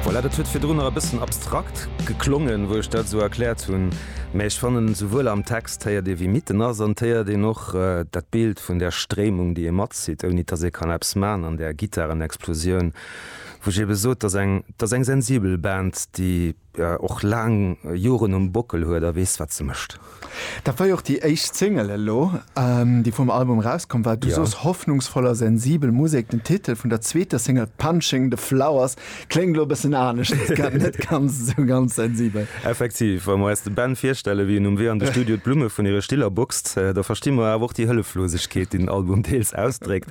Voilà, dat huet virdrun nach e bëssen abstrakt geklongen, wou ech dat esou erkläert hunn, mä ech fannen, esouwuel am Text héiert ee, wie mitten ass, an et héiert een och dat Bild vun där Stréimung, déi ee matzitt, ouni dass ee kann eppes man an där Gittarenexplosioun, wou ech ebe sot, dat ass eng, dat ass eng sensibel Band, déi. och laang Joren um Bockel huet a weess, wat se mécht. Dat war jo och déi éischt Single elo, déi vum Album erauskomm war. Du sos, hoffnungsvoll a sensibel Musek. Den Titel vun der zweeter Single Punching the Flowers kléngt elo e bëssen anescht, ass grad net ganz esou ganz sensibel. Effektiv. Wa mer eis de Ben virstellen, wéi en um Wee an de Studio d'Blumme vun hire Stiller boxt, da versti mer awer och déi Hëlleflosegkeet, déi den Album deels ausdréckt.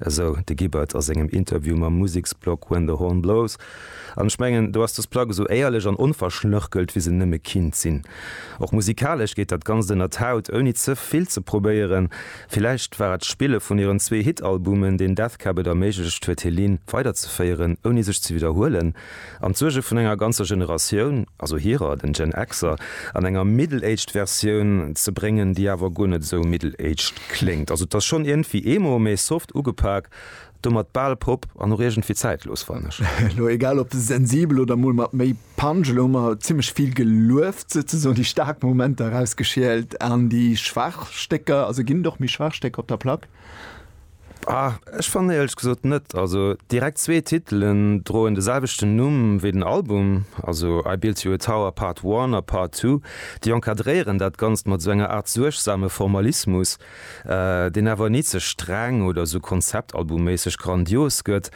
Esou de Gibbard a sengem Interview mam Museksblog When the Horn Blows. An ech mengen, do ass dës Plack esou éierlech an onverschnörkelt, wéi se nëmme kinnt sinn. Och musikalesch geet dat Ganzt ënner d'Haut, ouni ze vill ze probéieren. Villäicht war et d'Spille vun hiren zwee Hit-Albumen, deen Death Cab et erméiglecht huet, Helene weiderzeféieren, ouni sech ze widderhuelen. An d'Suerge vun enger ganzer Generatioun, also hirer, den Gen Xer, an enger middle-aged Versioun ze bréngen, déi awer guer net esou middle-aged kléngt. Also et ass schonn iergendwéi eemo méi soft ugepak, domat bal pop an och iergendwéi zäitlos, fannen ech. Elo egal op sensibel oder mol mat méi Punch, elo hu mer zimmlech vill gelueft, souzesoen déi staark Momenter erausgeschielt an déi schwaach Stécker, also ginn et och méi schwaach Stécker op der Plack? Ah, ech fannen éierlech gesot net. Also direkt zwee Titelen droen de selwechten Numm wéi den Album, also I Built You a Tower Part One a Part Two, déi encadréieren dat Ganzt mat esou enger Aart suergsame Formalismus, deen awer ni ze streng oder esou konzeptalbumméisseg grandios gëtt.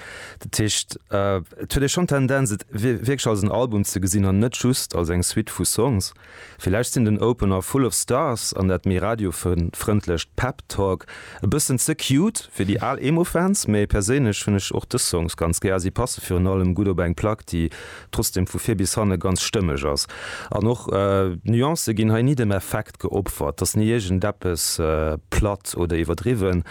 Dat heescht, et huet ee schonn d'Tendenz, et wierklech als en Album ze gesinn an net just als eng Suite vu Songs. Villäicht sinn den Opener Full of Stars an dat méi radiofrëndlecht Pep Talk e bëssen ze cute fir déi al Emo-Fans, mee perséinlech hunn ech och dës Songs ganz gär. Si passe virun allem gutt op eng Plack, déi trotzdeem vu vir bis hanne ganz stëmmeg ass. An och d'Nuancë ginn hei ni dem Effekt geopfert, et ass ni iergendeppes platt oder iwwerdriwwen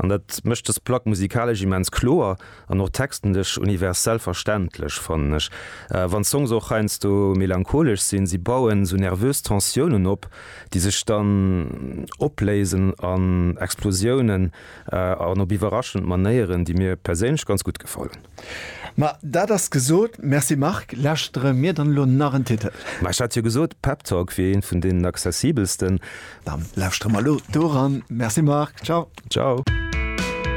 an dat mécht dës Plack musikalesch immens kloer. An och textenlech universell verständlech, fannen ech. Wann d'Songs och heiansdo melancholesch sinn, si bauen esou nervös Tensiounen op, déi sech dann opléisen an Explosiounen an op iwwerraschend Manéieren, déi mir perséinlech ganz gutt gefallen. Ma dat ass gesot. Merci Marc. Lauschtere mir dann elo nach en Titel? Ma ech hat jo gesot, Pep Talk wier een vun deenen accessibelsten. Dann lauschtere mer elo doran. Merci Marc. Ciao. Ciao.